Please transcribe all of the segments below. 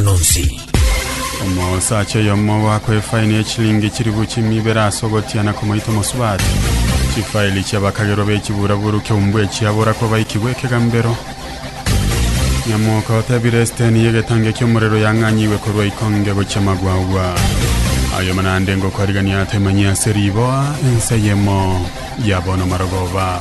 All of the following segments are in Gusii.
Amang'ana onsi. Omoosacha oyomo ogoakwa efaini ye chilingi chilifu chimia ibere ase ogotiana komoita omosubati. Chifaili chi'abakagerwa b'echiburaburu ki'ombua echiabora kobaikigwa ekegambero. Nyamoka otebire esiteni y'egetangi ki'omorero yang'anyigwe korwa ikonge gochia magwagwa. Aye omonande ngokwarigania atemanyie ase riboa, ense eyemo ya bono marogoba.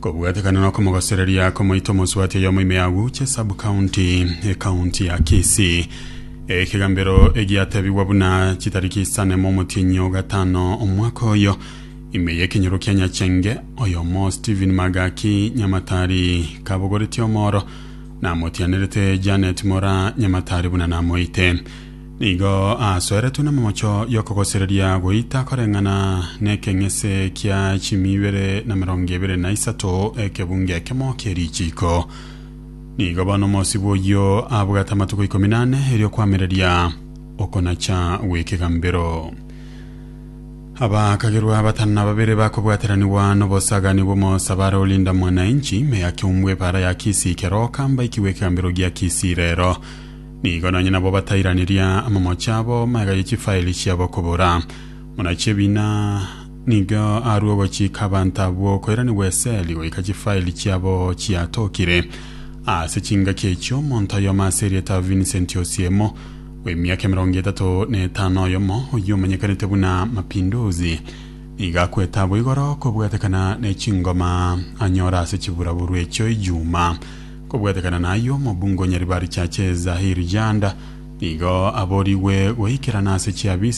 Kobwatekana nokomogosereria komoita omosubati oyomo ime ya Wuche sub county ecounty ya Kisii. Ekegambero egiatebigwa buna chitariki isane momotienyi o gatano omwaka oyo ime yekenyoro kia Nyachenge oyomo Stephen Magaki Nyamatari kabogoretie omoro namotianerete Janet Mora Nyamatari buna namoite. Nigo asoeretwe n'emomocho y'okogosereria goita koreng'ana n'ekeng'ese kia chimi ibere na merongo ebere na isato, ekebunga ekemo kie richiiko. Nigo bono omosibwa oyio abwate amatuko ikomi nane erio kwamereria okonacha gw'ekegambero. Abakagerwa batano na babere bakobwateranigwa n'obosagani bw'omosabare olinda mwananchi, me ya Kiombwe, epaara ya Kisii, Keroka, mbaikigwe ekegambero gia Kisii rero. Nigo nonye nabo batairaneria amamocho abo magega ye chifaeli chiabo kobora. Muna chebina nigo arue ogochika abanto abwo koiranigwa eseli goika chifaeli chiabo chiatokire. Ase chingaki echio omonto oyomo ase erieta Vincent Osiemo w'emiaka emerongo etato na etano oyomo oyio omanyekanete buna Mapinduzi nigo akwete abo igoro kobwatekana ne chingoma anyora ase chiburaburwa echio Ijumaa Kobwatekana nayio, omobungo o Nyaribari Churches Zahir Janda nigo aborigwe goikerana ase chiabiisi